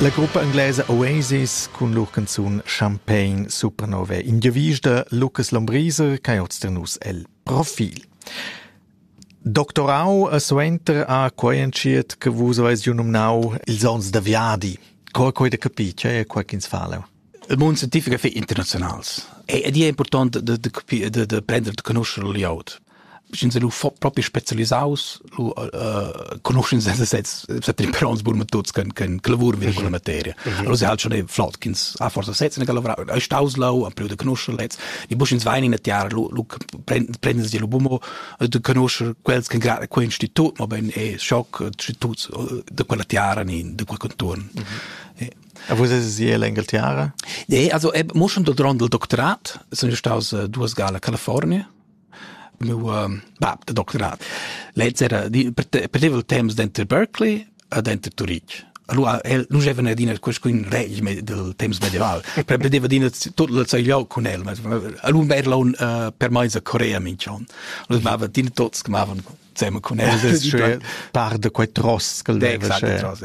La gruppa inglesa Oasis cun lur canzun Champagne Supernova ingiavisch da Lucas Lombriser ch'ha oz nus el profil. Doctorau a suenter a quai entschiet che vus avais giu numnau ils onns da viadi. Qua quai da capir, che è qua ch'ins fa leu? Il mund scientific è internaziunals e ed è impurtant da, da, capir, da, da prender da conoscere la glieud. Sch'ins lu propi specialisaus, lu uh, conoscens els sezs, set imperons bun metods che che lavur vin con la materia. Allora se halt schon flott ch'ins ha forza sezs ne lavora, ei staus lau, am da conoscer lez. Ni bu sch'ins vain in a tiara, lu lu prenden si lu bumo da conoscer quels che grad quei institut, ma ben e shock instituts da quella tiara ni da quel contorn. E vus eis ier l'Engaltiara? Nee, also eb, mo schon durant il doctorat sun io staus uh, duas gala a California. Meu um, bab de doctorat. Lez era di, perdeva il temps denter Berkeley e denter Turitg. Allora el non gevene adina qualcun reg del temps medieval. Per perdeva adina tot il zeigliau con el. Allora era un uh, per meisa Corea mincion. Allora mava dina tots che mavan zusammen con el. Par de quei tross che leva. Exact, tross.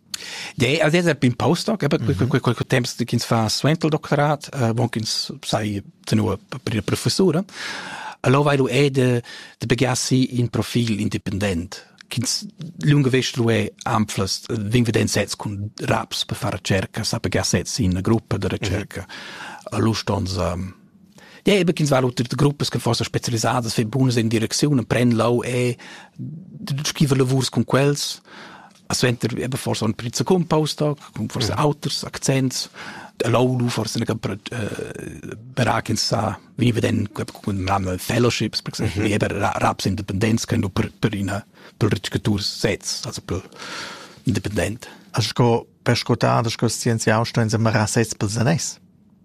Ja, also es bin postdoc, eben mm -hmm. quel temps ch'ins fa suenter il doctorat, uh, bon ch'ins sai tenor per professura. Allora vai lu è de, de begiassi in profil independent ch'ins lunga vest lu è anflas vin veden sets cun raps per far cerca, sa pegar sets in una gruppa de ricerca. Mm -hmm. Allora stonz Ja, eben ch'ins va unter gruppas che forse spezialisadas für bunas in direcziun, pren lau e scriver lavurs con quels. Suenter eben forse ein pizza cumpaus tag, con forse auters accents. Allow lu forse ne per äh, beraken sa wie wir denn haben fellowships per exemple mhm. eben raps Independenz können du per per in per Tour setz also per independent. Also go per scotar das scienziau sto in sem rases per sanes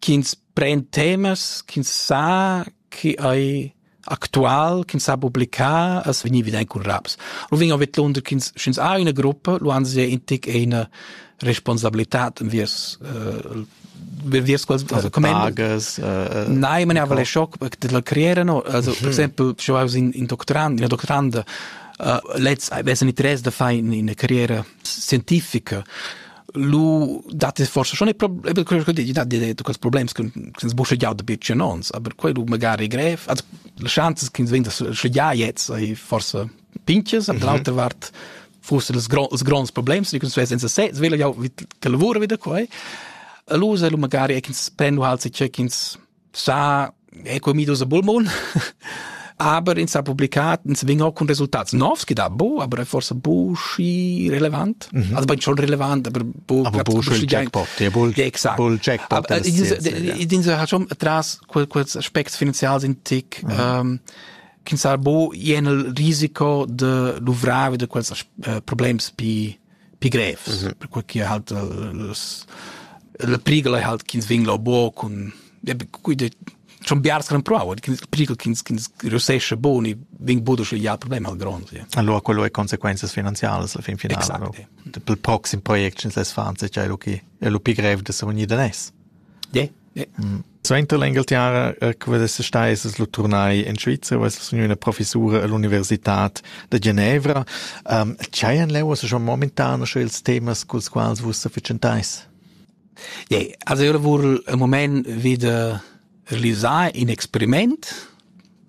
Ch'ins pren temas ch'ins sa chi ei actual, ch'ins sa publicar, as vegn evident cun raps. Lu vegn vidlunder ch'ins, sch'ins ha ina gruppa, lu han sie in tic ina responsabilitad enviers äh, enviers quels also tages äh, Nein, man aber schock de la carriera no also per mhm. esempio schon aus in in doctorand in doctoranda uh, let's I weiß nicht res da fai in in carriera scientifica lu dat es forse schon e quello che dici da quels problems che ins busche già da bitch annons aber quei du magari grev also le chances che ins venda schon ja jetzt ei forse pinches aber l'altra vart forse das gros gros problems die uns senza se svela ja wie lavora wieder quei e lu se lu magari ins spendo halt sich check ins sa è comidos a bulmon aber ins ha publicat ins vegn auch con resultats novs che da bo aber è forse bu schi relevant mhm. also ben schon relevant aber bu aber bu il jackpot der bull exakt bull jackpot ins ha schon tras quels aspects finanzials in tick mhm. ähm, kin sar bo jenel risiko de luvrave de quels uh, problems pi pi grevs, mm -hmm. perquai che halt las, la prigel halt ch'ins vingla bo cun quei de schon biars gran prova che prigel che ins reussesce boni ving budo sche ja problem al grond ja. allora quello è conseguenze finanziarie alla fin finale exact, no? ja. pel proxim project ins les fan se c'è lu chi è lu pi grev de se unir da nes Suenter l'Engalterra che vess stais lu turnai en Svizra, vess gnü üna professura all'universitad da Genevra. Dschaian leu also schon momentan schon ils temas culs quals vus sa fatschentais? Nee, also io lavur al mumaint vi da realisar in experiment